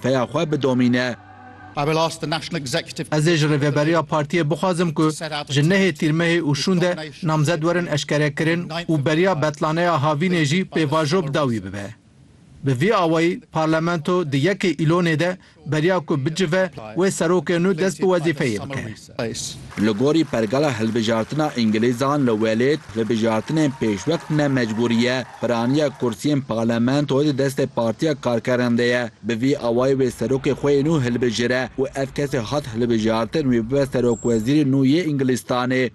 Peya xwe bidomîne. Ez ê ji Rêveberiya Partiyê bixwazim ku ji nehê Tîrmehê û şûnde namzet werin eşkerekirin û beriya betlaneya havînê jî pêvajo bi dawî bibe. Bi vî awayî Parlamento di yekê Îlonê de beriya ku bicive wê serokê nû dest bi wezîfeyê bike. Qays. Li gorî pergala hilbijartina îngilîzan li welêt, hilbijartinên pêşwext ne mecbûrî ye. Piraniya kursiyên parlamentoyê di destê Partiya Karkeran de ye. Bi vî awayî wê serokê xwe yê nû hilbijire û ev kesê hat hilbijartin wê bibe serokwezîrê nû yê Îngilîstanê.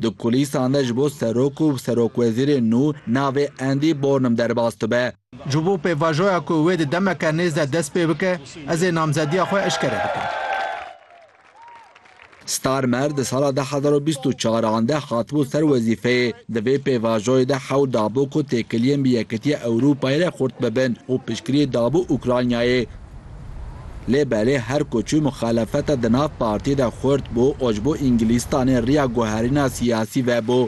Di kulîsan de ji bo serok û serokwezîrê nû navê Andy Bornum derbas dibe. Ji bo pêvajoya ku wê di demeke nêz de dest pê bike, ez ê namzediya xwe eşkere bikim. Starmer di sala du hezar û bîst û çar an de hatibû ser wezîfeyê. Di vê pêvajoyê de hewl dabû ku têkiliyên bi Yekîtiya Ewropayê re xurt bibin û piştgiriyê dabû Ukraynayê. Lê belê her ku çû muxalefeta di nav partiyê de xurt bû û ji bo Îngilîstanê riya guherîna siyasî vebû.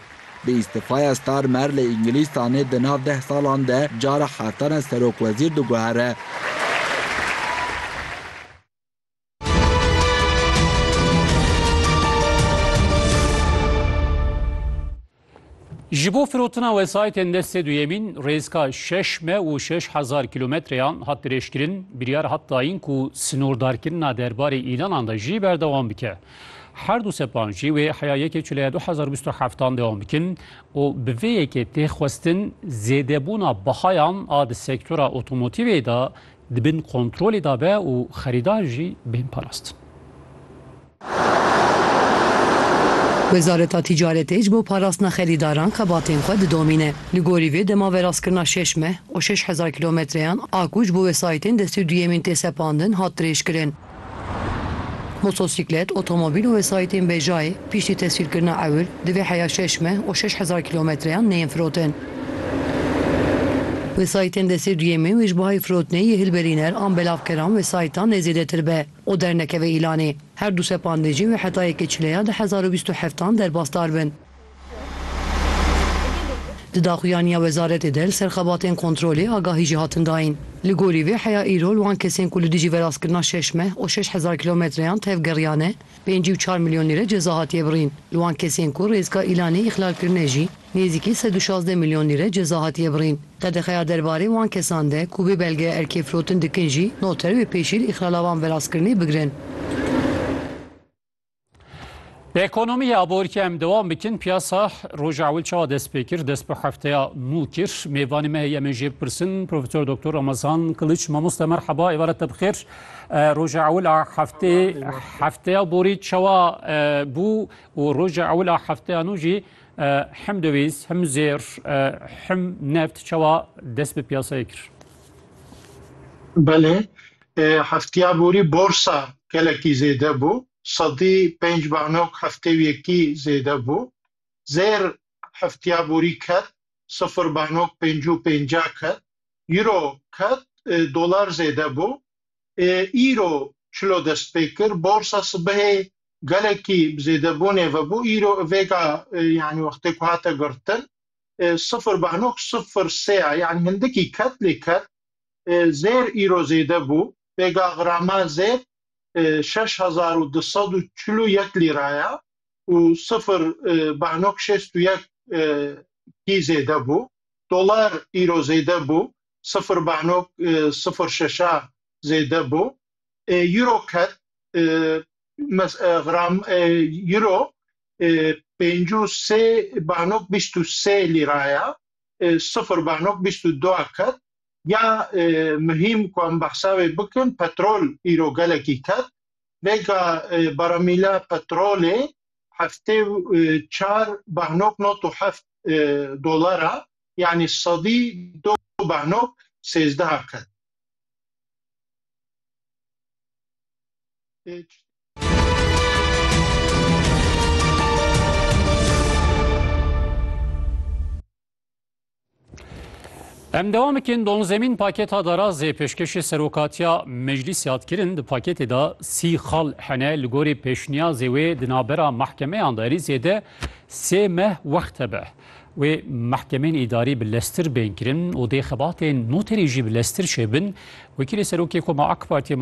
Bi îstifaya Starmer li Îngilîstanê di nav deh salan de cara heftan e serokwezîr diguhere. Ji bo firotina wesayîtên destê duyemîn rêzka şeş me û şeş hezar kîlometreyan hat dirêjkirin, biryar hat dayîn ku sînordarkirina derbarê îlanan de jî berdewam bike. Her du sepan jî wê heya yekê çûleya du hezar û bîst û heftan dewam bikin û bi vê yekê tê xwestin zêdebûna bihayan a di sektora otomotîvê de di bin kontrolê de be û xerîdar jî bên parastin. Wezareta Tîcaretê ji bo parastina xerîdaran xebatên xwe didomîne. Li gorî vê dema veraskirina şeş meh û şeş hezar kîlometreyan a ku ji bo wesayîtên destî duyemîn tê sepandin hat dirêjkirin. Motosîklet, otomobîl û wesayîtên bejayê piştî teswîrkirina ewil di vê heya şeş meh û şeş hezar kîlometreyan neyên firotin. Wesayîtên destê duyemîn wê ji bo hay firotinê yê hilberîner an belavkeran wesayîtan nê zêdetir be. û dernekeve îlanê. Her du sepandê jî wê heta yekê çileya du hezar û bîst û heft an derbasdar bin. Di daxuyaniya wezaretê de li ser xebatên kontrolê agahî jî hatin dayîn. Li gorî vê heya îro li wan kesên ku li dijî verastkirina şeş meh û şeş hezar kilometreyan tevgeriyane pêncî û çar milyon lîre ceza hatiye birîn. Li wan kesên ku rêzka îlanê îxlalkirine jî. Nêzîkî sed û şazdeh milyon lîre ceza hatiye birîn. Qedexeya derbarê wan kesan de ku vê belgeya erkê firotin dikin jî noter wê pêşîl îxlala van verastkirinê bigirin. Bi ekonomî a borî em dewam bikin, piyasa roja ewil çawa dest pê kir, dest bi hefteya nû kir. Mêvanê me heye em ê jê bipirsin Profesor Doktor Ramazan Kiliç. Mamoste merhaba, êvaret te bi xêr. Roja ewil a hefteyê hefteya borî çawa bû û roja ewil a hefteya nû jî Him döviz, him zêr, him neft çawa dest bi piyasayê kir? Belê, heftiya borî borsa gelekî zêde bû. Sedî pênc banok heftê yekî zêde bû. Zêr heftiya borî ket, sifir banok pêncû pênca ket. Euro ket, dolar zêde bû. îro çilo dest pê kir. Borsa sibehê gelekî bi zêdebûnê ve bû. Îro vêga yanî wextê ku hate girtin sifir beh nokte sifir sê ye. Yanî hindikî ket lê ket zêr îro zêde bû. Vêga grama zêr şeş hezar û du sed û çil û yek lîra ye û sifir beh nokte şêst û yek kî zêde bû. Dolar îro zêde bû. sifir banok sifir şeşa zêde bo. Euro ket gram euro pênc û sê banok bîst û sê lîra ya, sifir banok bîst û du a ket. Ya muhîm ku em behsa wê bikin petrol îro gelekî ket. Vêga baramîla petrolê heftê çar banok not û heft dolar a, yanî sedî du bano sêzdeha qat. Em devam bikin don zemîn paketa darazê pêşkêşê serokatiya meclîsê hat kirin di paketê de sî xal hene li gorî pêşniyazê wê di navbera mahkemeyan de erîzê de Sê meh wext hebe wê mehkemeyên îdarî bi leztir bên kirin û dê xebatên noterî jî bi leztir çêbin. Wekîlê Serokê Koma AK Partiyê,